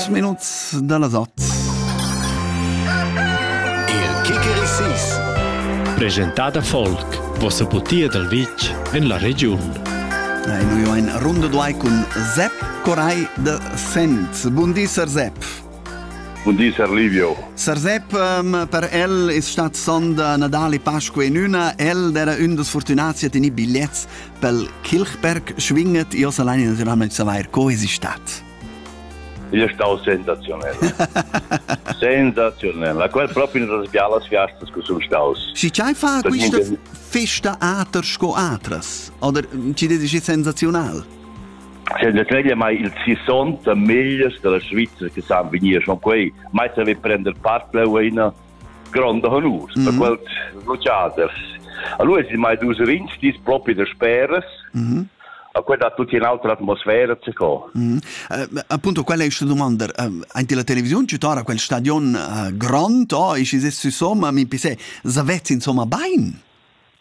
minuts da las otg. Il Kicker Sis. Presentada Folk, vossa butia dal vitg en la regiun. E noi ho in runda duai cun Sepp Coray de Fens. Buondì, Sir Sepp. Buondì, Sir Livio. Sir Sepp, um, per el è stat sonda Natale, Pasqua in una. El era un des fortunats a tenere bigliettes pel Kirchberg schwinget. Io sa allein naturalmente saver co es stat. Igl è stau sensaziunel. sensaziunel, la qual proprio in das bialas fiastas che sun staus. Schi chai fa questa festa ater sco atras? Oder ci dedi sensazional? Senzatglia mai il sissonta megliers della Svizzera che san venir, schon quei mai saver prender part la ueina gronda honur mm -hmm. da mhm. quels vociaders. Allora si mai dus rinci dis propi de speras, mm -hmm. a quella tutti in altra atmosfera ce co. Mm -hmm. uh, appunto quella esce domanda uh, anche la televisione ci tora quel stadion uh, grond oh, esce se su somma mi pise zavez insomma bain.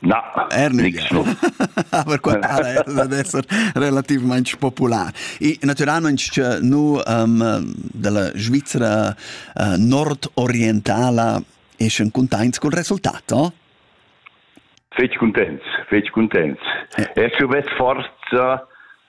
Na, nichno. Aber qua era dad esser relativmaing popular. I natüralmaing nu um, della Svizzera uh, nordorientala eschan cuntaints cul resultat, no? Fetg cuntents, fetg cuntents. Eh. Es vess forza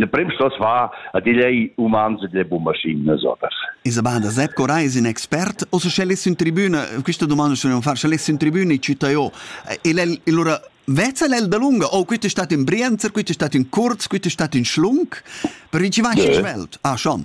Le prim stos far a digl ei umans e delle bombaschines oters. Isabella da Sepp Coray es ün expert. O se scellessi in tribüna, questa domanda se non far, scellessi in tribüna e citta io. El è allora Vezza l'el da lunga, oh, questa è stata in Brienzer, questa è stata in Kurz, questa è stata in Schlunk, per ricevare yeah. in Welt. Ah, schon.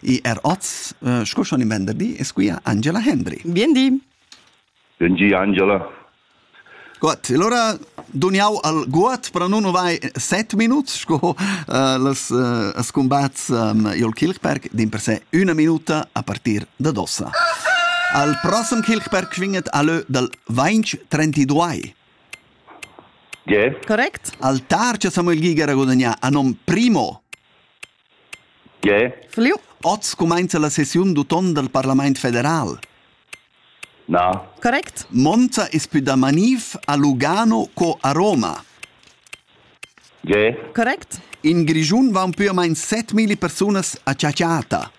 E er oz, uh, sco schon in venderdi, es quia Angela Hendry. Bien di. Bien di, Angela. Gut, allora duniau al guat per non vai 7 minuts, sco uh, las uh, scombats um, Jol Kilchberg, din per se una minuta a partir da dossa. Al prossem Kilchberg vinget alle dal 20-32. Yeah. Correct. Al tar che Samuel Giger a guadagnà a nom primo Tge? Oz cumainza la sessiun d'uton dal Parlamaint federal. Na. Correct. Monza es pü da maniv a Lugano co a Roma. Tge? Correct. In Grischun vaun pü o main set milli persunas a chatschatta.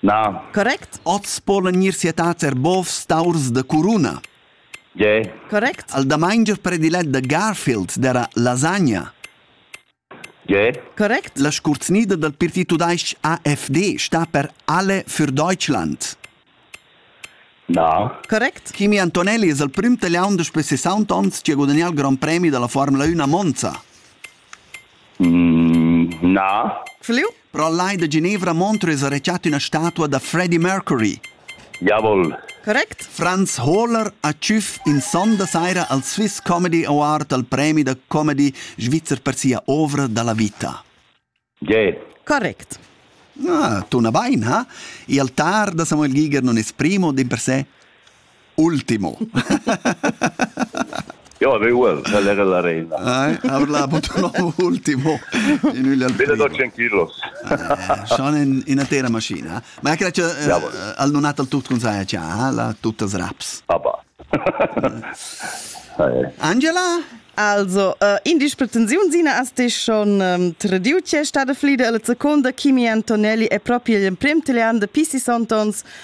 Na. Correct. Oz polan gnir sietats er bovs taurs da curuna. Tge? Correct. Al damaingia predilet da Garfield d'era lasagna. Correct. La scurzgnida dal partit tudais-ch AFD sta per Alle für Deutschland. Na. Correct. Kimi Antonelli es il prüm taliaun daspö 60 ons chi ha gudagnà il grand premi da la Formula 1 a Monza. Mm, na. Fliu? Però lai da Genevra Montreux ha retschet üna statua da Freddie Mercury. Diavol! Correct? Franz Hohler ha tschüf in sonda saira al Swiss Comedy Award al premi da comedy svizzer per sia ovra da la vita. Ge. Correct. Ah, tuna bain, ha? Il altar da Samuel Giger non es primo d'in per sé? Ultimo. Ja, det ual, quella era la reina. Nei, habla purtroppo ultimo in ugli al 1200 kilos. Schon in in atera maschina. Ma è che al non hat al tut con sai cha, la tuttas raps. Aber. Angela? Also, uh, in disprensiun sina as ti schon um, tradiu che è stata flida alla seconda Kimi Antonelli è proprio l'emprim italian de Pisi Sontons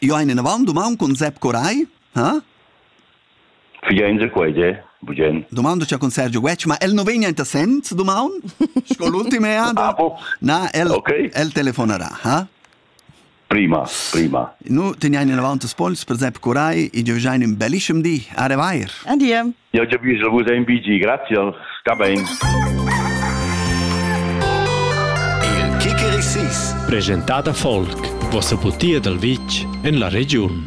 Io hai inavant duman cun Sepp Coray, ha? Figenza quei de, bugen. Domanda c'ha con Sergio Wetsch, ma el no vegna enta sent duman? Sco l'ultime ada? Na, el okay. el telefonarà, ha? Prima, prima. Nu teniain inavant das Pols per Sepp Coray, i giovgiain in bellischem di, a revair. Adia. Ja giavüsch a vus in BG, grazie, sta bain. Il Kickerisis, presentada folk, vossa putia dal vitg en la regiun.